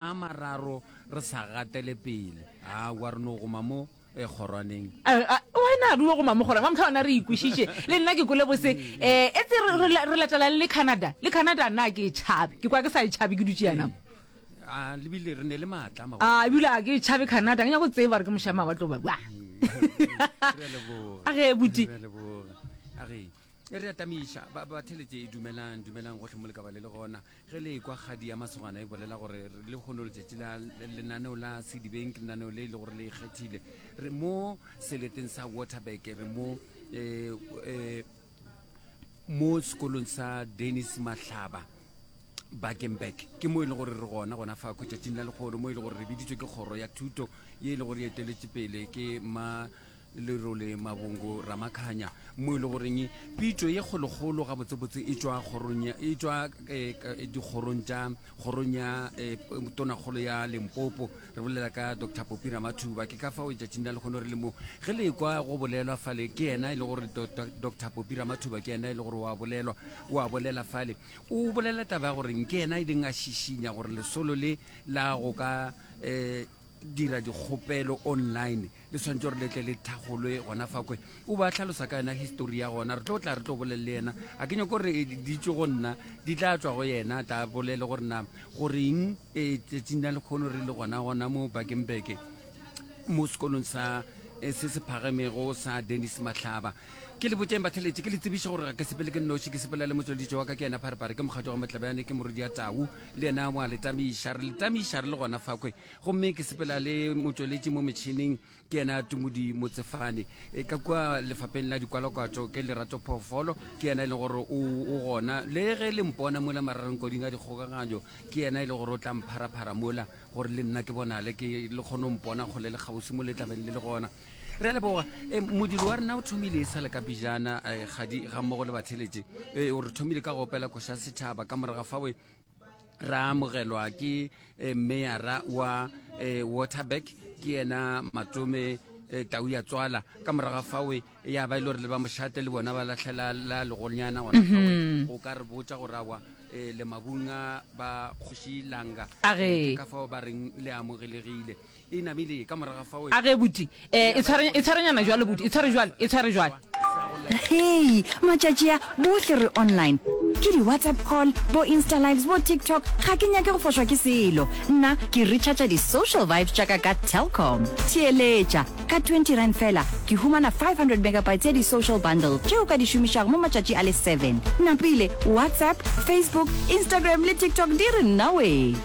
a mararo re sa gatele pele a wa re no goma mo e kgorwaneng wena re yo goma mo kgorwaneng wa motlha ona re ikwešiše le nna ke kole bose um e tse re latelang le canada le canada na ke e tšhabe ke kwa ke sa e tšhabe ke dutše yana a lebile re ne le maatla ma a ebile a ke tšhabe canada ke nyako tseba re ke mošama wa tlo ba a ge buti a ge e re atamiša ba ba theletse e dumelang dumelang gotlhe mo le ka ba le le gona ge le kwa kgadi ya masogana e bolela gore re le kgono letšatši la lenaneo la sedibeng ke lenaneo le e le gore le ikgethile re mo seleteng sa waterback re mo eh, eh, mo sekolong sa dennis mahlaba bakeng back ke mo e le gore re gona gona fa khwetšatšing la lekgolo mo e le gore re biditswe ke kgoro ya thuto ye e le gore e eteletše pele ke ma lerole mabongo ramakhanya mo e le goreng pitšo ye kgolokgolo gabotsebotse e tšwa kgorong e tšwa eh, eh, dikgorong tša kgorong ya eh, tonakgolo ya lempopo re bolela ka dr popi ramathuba ke ka fao letšatšing la lekgono re le mo ge le kwa go bolelwa fale ke yena e le gore dr popi ramathuba ke yena e le gore wa bolelwa wa bolela fale o bolela taba ya goreng ke yena e leng a šišinya gore lesolo le la go ka um dira dikgopelo online le tshwanetse gore letle le thagolwe gona fa kwe o ba tlhalosa ka yena histori ya gona re tlo tla re tlo bolele le yena a ke nyako gore di tswe go nna di tla tswa go yena ta bolele gore na goreng e tsetsing na le kgono re le gona gona mo bakeng beke mo sekolong sa eh, se se phagamego sa denis matlhaba Ke le botšeng batheletši, ke le tsebiše gore ga ke sepele ke nnoši, ke sepela le motšweleditši wa ka, ke yena Pharepare, ke mokgatšo wa Matlabane, ke morodi ya Tau, le yena wa le tamiša, re le tamiša re le gona fakwe, gomme ke sepela le motšweletši mo metšhineng, ke yena Tumudi Motsefane. E, ka kua lefapeng la dikwalakwatšo ke Lerato Phoofolo, ke yena e leng gore o, o gona. Le ge le mpona mola mararengkoding a dikgokaganyo, ke yena e leng gore o tla mpharaphara mola, gore le nna ke bonale, ke le kgone go mpona kgole le kgauswi mo le tlabeng le le gona. re a leboga e, modiri wa rena o thomile e sale ka pejana e, kgadi ga mmogo le batheletše e, o re thomile ka go opela koša setšhaba ka moraga fawe ra amogelwa ke e, meyara wa waterback ke yena matome tau ya tswala ka moraga fawe ya ba e le gore le ba mošate le bona ba latlhela la legonyana gona mhm. o ka re botsa go rawa um le mabunga ba kgoši langa ka fao ba reng le amogelegile E namile ka morago ga fao e. A ge buti, e, e tshware, e tshware nyana jwale, buti, e tshware jwale, e tshware jwale. Hei, matšatši a, bohle re online. Ke di-WhatsApp call, bo-Instalives, bo-TikTok, ga ke nyake go fošwa ke selo. Nna, ke recharger di-social vibes tša ka ka Telkom. Theeletša! Ka twenty rand feela, ke humana five hundred megabytes ya di-social bundle tše o ka di šomišago mo matšatši a le seven. Napile, WhatsApp, Facebook, Instagram le TikTok di re nnawee!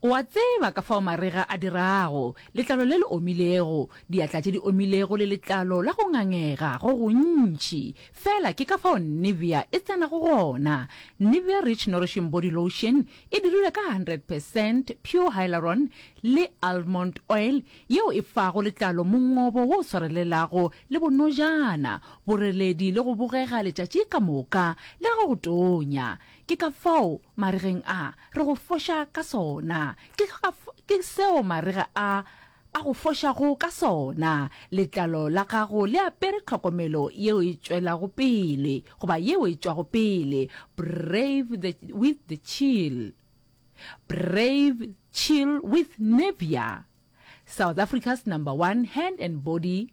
O a tseba ka fao marega a dirago, letlalo le le omilego, diatla tše di omilego le letlalo la go ngangega go gontši. Feela ke ka fao Nivea e tsenago gona. Nivea Rich Nourishing Body Lotion e dirilwe ka hundred percent pure hyaluron le almond oil yeo e fago letlalo mongobo wo o swarelelago le bonojana, boreledi le go bogega letšatši ka moka le ge go tonya. Ke ka fao maregeng a re go foša ka sona. Ke, ke seo marega a a go fošago ka sona. Letlalo la gago le apere tlhokomelo yeo e tšwelago pele, goba yeo e tšwago pele. Brave the, with the chill. Brave chill with Nivea. South Africa's number one hand and body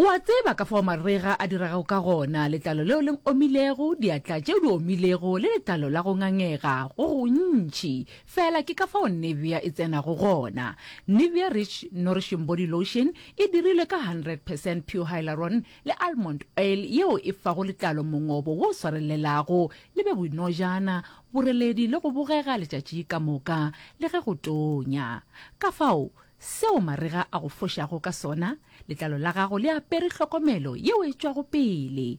O a tseba ka fao marega a dirago ka gona, letlalo leo le omilego, diatla tšeo di omilego le letlalo la go ngangega go gontši. Feela ke ka fao Nivea e tsenago gona. Nivea Rich Nourishing Body Lotion e dirilwe ka 100 percent pure hyaluron le almond oil yeo e fago letlalo mongobo wo swarelelago le be boinojana, boreledi le go bogega letšatši ka moka le ge go tonya. Ka fao Seo marega a go fošago ka sona, letlalo la gago le apere hlokomelo yeo e tšwago pele,